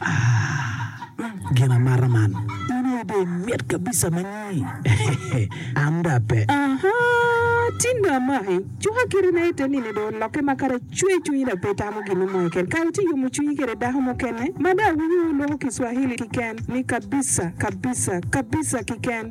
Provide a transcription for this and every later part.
Ah, gin amata man. In aye dong imit kabisa ma nyi. An dong ape. Aha, tin dong amaki. Cuka kite na ite nini dong olokke ma kara cwer cwinyi dong pe itamo gin mo keken. Kara ci iyomo cwinyi kede dako mukene ma dong awinyo wulwoko kiswahili kiken ni kabisa, kabisa, kabisa kiken.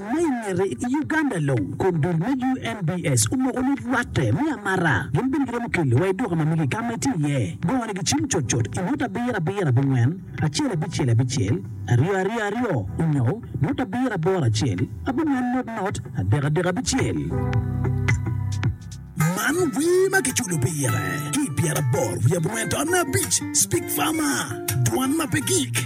Ma i ngete, i Uganda long, kom dul me UNBS omoko ni rwatte me amata gin bene giromo keli wa i duka ma mege ka ma itye iye. Gongo ni gicim cut cut i ngut abiro abiro abingwen acel abicel abicel aryo aryo aryo onyo ngut abiro aboro acel abingwen ngut ngut adek adek abicel. Man wer ma kiculo pire ki i pyeraboro wiye abongwen taonne abic, Speak Farmer, Dwan ma pe gik.